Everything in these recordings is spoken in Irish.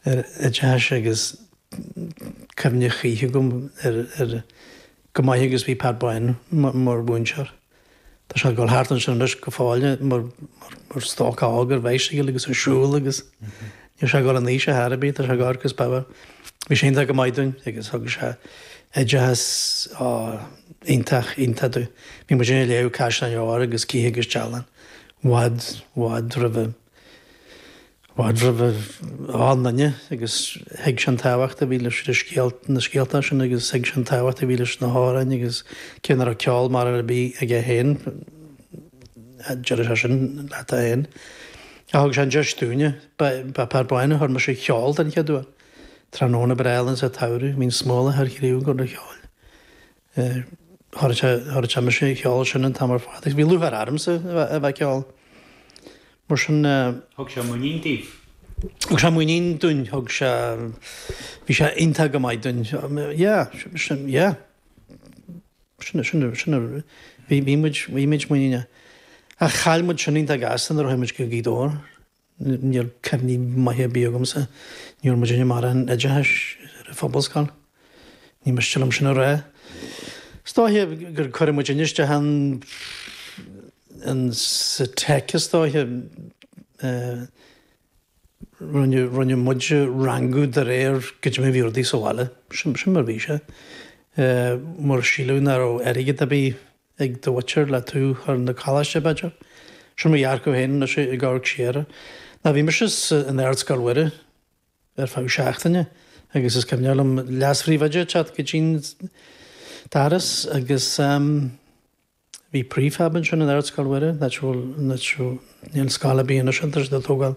oideachais agus cuimhne choíche agam air go maith agus bhí Pat Bán mar mhúinteoir. Tá sé ag dul thart ansin anois go fóill mar stócach óg ar bicycle agus ag siúl agus níl sé ag dul in aois ar chor ar bith, tá sé ag amharc as Baba. Bhí sé iontach go maith dúinn agus thug sé oideachas iontach iontach dúinn. Bhí muid ag léamh Caisleáin Óir agus Cith agus Dealán i bhfad i bhfad roimhe. mar ba ghá dúinne agus thuig sé an tábhacht a bhí leis na scéalta sin agus thuig sé an tábhacht a bhí leis na hamhráin agus cé nach raibh ceol mór ar bith aige féin, deireadh sé sin leat féin, ach thug sé an deis dúinne. Ba Pat Bán a chuir mise ag ceol den chéad uair. Tráthnóna breá álainn sa tsamhradh. Bhí an smólach ar chraoibh ag gabháil cheoil. Chuir sé mise ag ceol sin an t-am ar fad agus bhí lúcháir ormsa a bheith ag ceol. Mar sin. Thug sé muinín daoibh? Thug sé muinín dúinn, thug sé, bhí sé iontach go maith dúinn. Yeah, sin, yeah. Sin, sin, sin, bhí muid, bhí muid muiníneach. Ach chaill muid sin iontach gasta nuair a chuaigh muid go Gaoth Dobhair. Níl cuimhní maithe ar bith agamsa. Ní raibh muid in ann an oideachais ar an phobalscoil. Ní miste liom sin a rá. Is dóiche gur cuireadh muid isteach ins an tech is dóiche. Rinneadh muid a rangú de réir goidé mar bhí rudaí sa bhaile. Sin mar bhí sé. Mar síleadh nach raibh airgead ar bith. ag do mhuintir le tú a chur na Coláiste, b'fhéidir? Sin mo dhearcadh féin anois i gcomhair Chiara. Nó bhí mise in Ard Scoil Mhuire ar feadh seachtaine agus is cuimhneach liom leas-phríomhoide ag teacht go dtí an doras agus bhí prefab ansin in Ard Scoil Mhuire, Níl scoil ar bith anois ann tar éis dó tógáil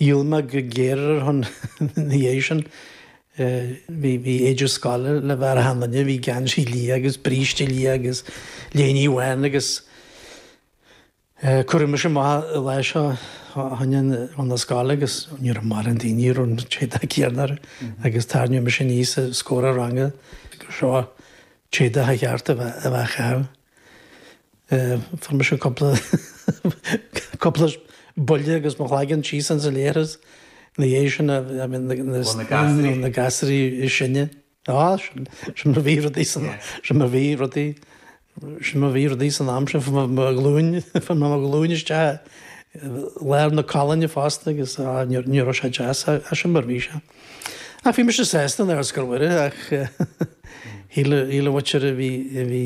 Dhíol mé go géar ar a shon ina dhiaidh sin. Bhí éide scoile le bheith ar achan duine, bhí geansaí liath agus bríste liath agus léine bhán agus cuireadh mise amach lá seo thoin an chun na scoile agus ní raibh mórán daoine a raibh an t-éadach céanna orthu agus tarraingíodh mise aníos os comhair an ranga gur seo an t-éadach ba cheart a bheith acu. Fuair mise cúpla cúpla buille agus mo chloigeann síos ins an leithreas ina dhiaidh sin a I mean na na Ó na gasraí. na gasraí is sine. Á sin sin mar bhí rudaí san Yeah. sin mar bhí rudaí sin mar bhí rudaí san am sin fuair mé mo ghlúin fuair mé mo ghlúin isteach i lár na colainne fosta agus á ní ní raibh sé deas á sin mar bhí sé. Ach bhí mise sásta in Ardscoil Mhuire ach shíl an mhuintir a bhí a bhí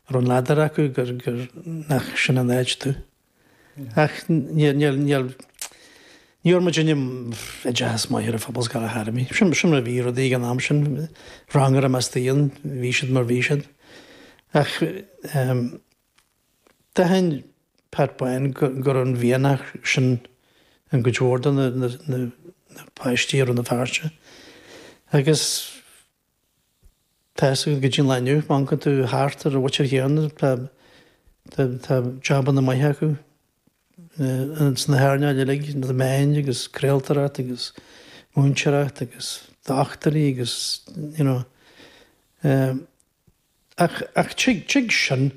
a raibh an ladar acu gur gur nach sin an áit domh. Ach níor níor níor ní bhfuair muidinne oideachas maith ar phobalscoil ar chor ar bith. Sin sin mar a bhí rudaí ag an am sin. Rang ar i measc daoine bhí siad mar bhí siad. Ach ehm. D'aithin Pat Bán go raibh an mhianach sin i gcuid mhór de na páistí i Rann na Feirste agus tá go dtí an lá inniu, má amharcann tú thart ar an mhuintir chéanna, tá jabanna maithe acu sna hearnáil uilig, na meáin agus craoltóireacht agus múinteoireacht agus dochtúirí agus, you know, Ach tig sin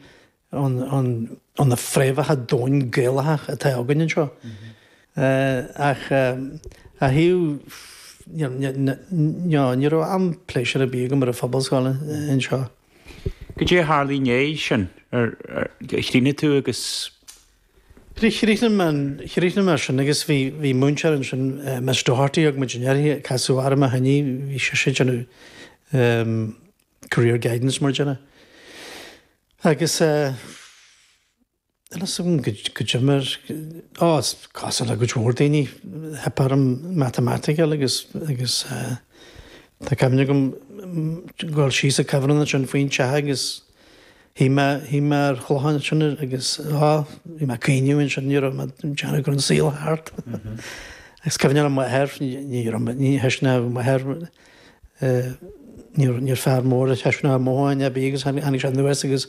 ó na fréamhacha domhain Gaelacha atá againn anseo. Ach a hAodh, no, ní raibh aon phléisiúr ar bith agam ar an phobalscoil anseo. Goidé a tharla i ndéidh sin? Ar chríochnaigh tú agus. Chríochnaigh mé, chríochnaigh mé sin agus bhí múinteoir ansin, Miss Doherty, thug muidinne uirthi, casadh orm ó shin í, bhí sise ag déanamh, Career Guidance mar a déarfá. Agus eh, a fhios agam go, go d'imir, á, is cosúil le go leor daoine, theip orm matamaitic agus, agus eh, tá cuimhne agam ag dul síos a' cuibhreann ansin faoin teach agus shuigh mé, shuigh mé ar chloch ansin agus á, bhí mé ag caoineadh ansin, ní raibh mé ag déanamh go raibh an saol thart. Agus cuimhne ar m'athair, ní, ní raibh, ní thuisne m'athair. Níor fear mór ag taispeáint a mhothúcháin a bhí agus tháinig sé anuas agus